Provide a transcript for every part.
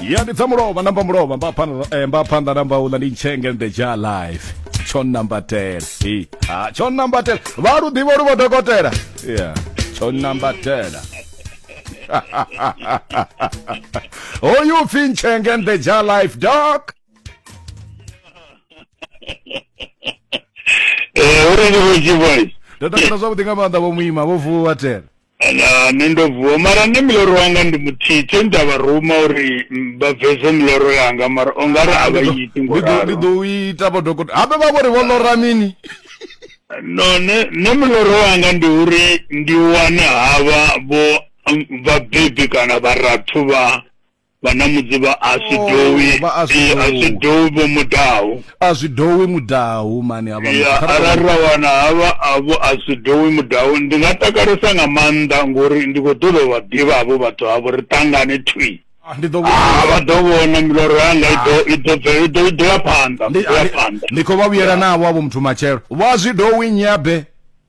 ya ndi dza mulovha namba mulovha mba phanḓa eh, mba phanḓa namba uḽa ndi ntshenge the ja life tsho nambatela hi ha tsho nambatela vha lu ḓivha lu vho dokotela ya tsho nambatela hoyu oh, pfi ntshenge the ja life doc eh uri ndi vho tshivhoi ndo takala zwavhuḓi nga maanḓa vho muima vho vuwa tela Ala, nṋe ndo vuwa mara nṋe miloro wanga ndi muthihi tshe nda vha ruma uri vha bvese miloro yanga mara o nga ri a vha iti ngo ralo ndi ḓo ita vho dokotela habe vha vhori vho lora mini no nṋe nṋe miloro wanga ndi uri ndi wane havha vho vhabebi kana vharathu vha Vhanamudzi vha a zwi Oh, dowi vha a zwi Eh, a zwi dowi. dowi vho mudahu a zwi dowi mudahu mani havha muthu. ya Kha ri arali ra wana havha avho a zwi dowi mudahu ndi nga takalesa nga maanḓa ngori ndi khou ṱoḓa u vha ḓivha havho vhathu havho ri tangane thwi Ah, ndi ḓo Ah, vha ḓo vhona miloro yanga i ḓo i ḓo bve- i ḓo i ḓo ya phanḓa ndi i ḓo ya phanḓa ndi khou vha vhuyela navho avho muthu matshelo vha zwi dowi nyabe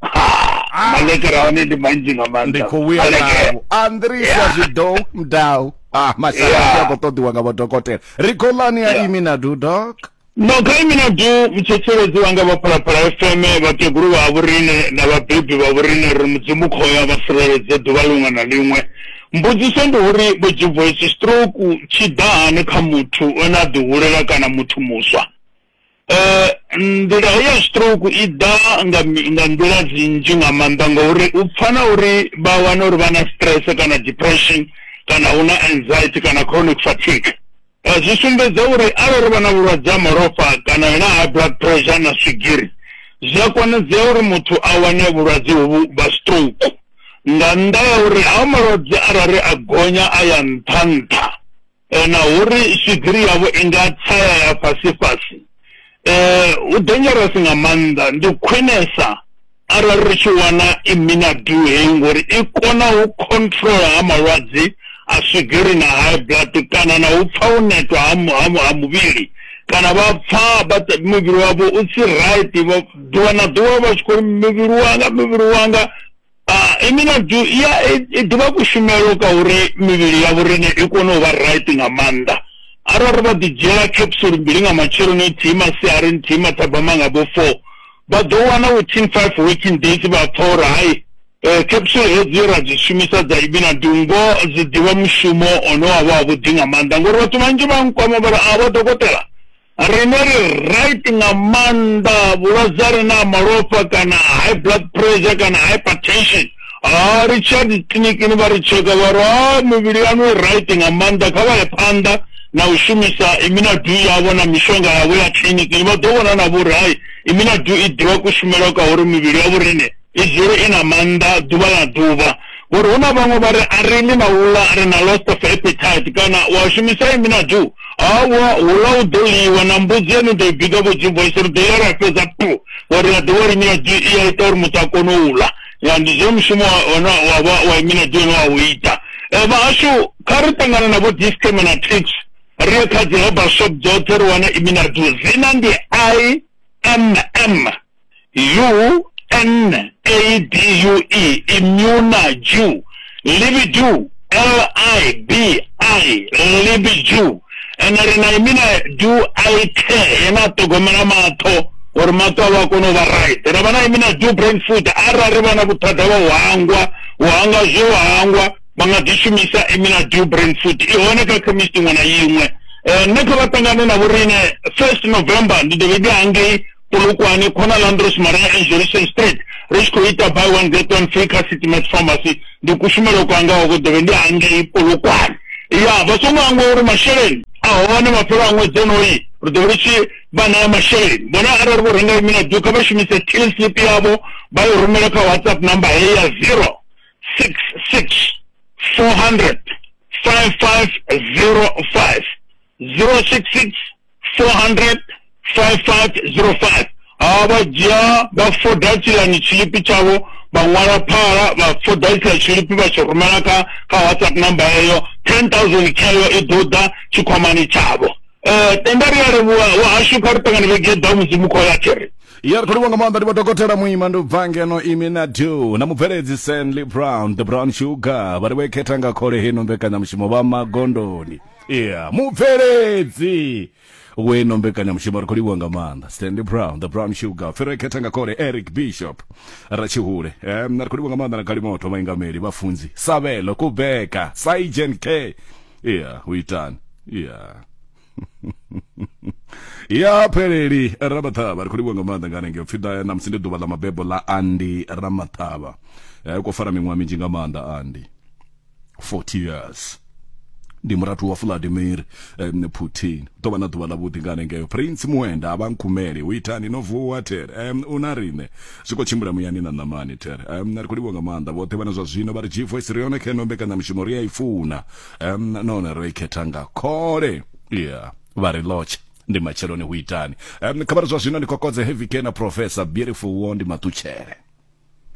Ah. maḽekere a hone ndi manzhi nga maanḓa ndi khou vhuya navho andrisa zwidow mdau ah masala a khou ṱoḓiwa nga vhodokotela ri khou ḽani ya imi na du dok no kha imi na du mutshetsheledzo wanga vha phalaphala fm vhakegulu vha vhorine na vhabebi vha vhorine ri mudzimu khoya vha sireledze ḓuvha liṅwe na liṅwe mbudziso ndi uri vho dzhibvoisi stroke tshi ḓa hani kha muthu o na ḓihulela kana muthu muswa nḓila heyi ya stroke i ḓa nga nga nḓila dzi nnzhi nga maanḓa ngori u pfha na uri vha wana uri vha na stress kana depression kana hu na anxiety kana chronic fatigue zwi sumbedza uri arali vha na vhulwadze ha malofha kana na high blood pressure na swigiri zwi a konadzea uri muthu a wane vhulwadze hovhu vha stroke nga nnḓa ya uri ha malwadze arali a gonya a ya nṱha nṱha. eh, na uri swigiri yavho i nga tsaya ya fhasi fhasi eh, hu dangerous nga maanḓa ndi khwinesa arali ri tshi wana iminadu heyi ngori i kona u controla ha malwadze a swigiri na high blood kana na u pfa u netwa ha muvhili kana vha pfa muvhili wavho u si right ḓuvha na ḓuvha vha tshi khou muvhili wanga muvhili wanga i mina du ya i ḓivha kushumelo ka uri mivhili ya vhorine i kone u vha right nga maanḓa arali vha ḓi dzhiela capsule mbili nga matsheloni nthihi masiari nthihi mathabama nga vho four vha ḓo wana within five working days vha pfa uri hai um capsule hedzi ra dzi shumisa dza ibina dungo dzi ḓivha mushumo one wa vha wavhuḓi nga maanḓa ngori vhathu vhanzhi vha nkwama vha ri a vha dokotela Riṋe ri right nga maanḓa vhulwadze ha re na ha malofha kana high blood pressure kana hypertension ha ri tshiya dzi kiḽinikini vha ri tsheka vha ri ha mivhili yaṋu i right nga maanḓa kha vha ye phanḓa na u shumisa iminadu yavho na mishonga yavho ya kiḽinikini vha ḓo vhona na vhori hai iminadu i ḓivha kushumele kwa uri mivhili ya vhorine i dzule i na maanḓa ḓuvha na ḓuvha. Vho ri, Hu na vhaṅwe vha ri, A ri ḽi na u ḽa, ri na loss of appetite, kana, U a shumisa imi na du? Awa, huḽa hu ḓo ḽiwa, na mbudzi ye ni ḓo i bika vho Jim Boyce, ri ḓo ḽa ra fhedza puu. Vho ri, Na ḓivha uri imi na du i a ita uri muthu a kone u ḽa. Ya, ndi zwone mushumo wa hone wa vha wa imi na du une wa u ita. Vhahashu, kha ri ṱangane na vho Dischem na Tips, ri ye kha dzi herbal shop dzoṱhe ri wane imi na du. Dzina ndi IMM. U-N-A-D-U-E, imuna, Jew, libidu, L-I-B-I, libidu, ene ri na imina du aithe yena a ṱhogomela maṱo uri maṱo avho a kone u vha right ra vha na imina du brain food arali vha na vhuthada vha u hangwa u hangwa zwo u hangwa vha nga ḓi shumisa imina du brain food i hone kha khemisi iṅwe na iṅwe um nṋe kha vha ṱangane na vhoriṋe first november ndi ḓo vha ndi hangei Polokwane, Khona Landros Marais and Jerusalem Street ri tshi khou ita buy one get one free kha City Max Pharmacy ndi kushumelo kwanga ho dovhe ndi hangei Polokwane ya vha songo hangwa uri masheleni a hone mafhelo a ṅwedzi onoyi ri ḓo ri tshi vha ṋea masheleni vhone arali vho renga imina du kha vha shumise till slip yavho vha yo rumela kha whatsapp number heyi ya zero six six four hundred five five zero five zero six six 4005505 hawa vha dzhia vha foda tshilani tshilipi tshavho vha ṅwala phala vha foda tshiḽa tshilipi vha tshi rumela kha kha whatsapp number eyo 10000 khayo i ḓo ḓa tshikhwamani tshavho um tenda ri a livhuwa wahashu kha ri ṱangane vhege ḓa mudzimu khou ya thiri ya ri khou livhuwa nga maanḓa ndi vha dokotela muima ndi bva ngeno imi na do na mubveledzi stanley brown the brown sugar vha ri vho i khetha nga khole heno mbekanyamushumo vha magondoni yeah mubveledzi weno mbekanyamushumo ri khou livhuwa nga maanḓa stanley brown the brown sugar ferekhetha nga kole eric bishop ratshihule um, ri khou livhuwa nga maanḓa na kalimoto vhaingameli vhafunzi savelo kubeka saigen k yeah u itani yeah ya pheleli ramaṱhavha ri khou livhuwa nga maanḓa nga hanengei upfhi ḓa namusi ndi ḓuvha ḽa mabebo ḽa andi ramaṱhavha um u khou fara miṅwaha minzhi nga maanḓa andi 40 years ndi murathu wa vladimir um, putin ḓo vha na ḓuvha ḽavhuḓi nga hanengeyo prince muenda a vha nkhumele u itani no vuwa ter um, u na riṋe zwi khou tshimbila muyani na ṋamani ter um, ri khou livhuwa nga maanḓa vhoṱhe vhana zwa zwino vha ri g voice ri yone kheno mbekanyamushumo ri a i funa um, nahone ro i khetha nga khole yeah vha ri lotshe ndi matsheloni hu itani um, khavhari zwa zwino ndi kokodze heavy ke na professor beautiful wo ndi maṱutshele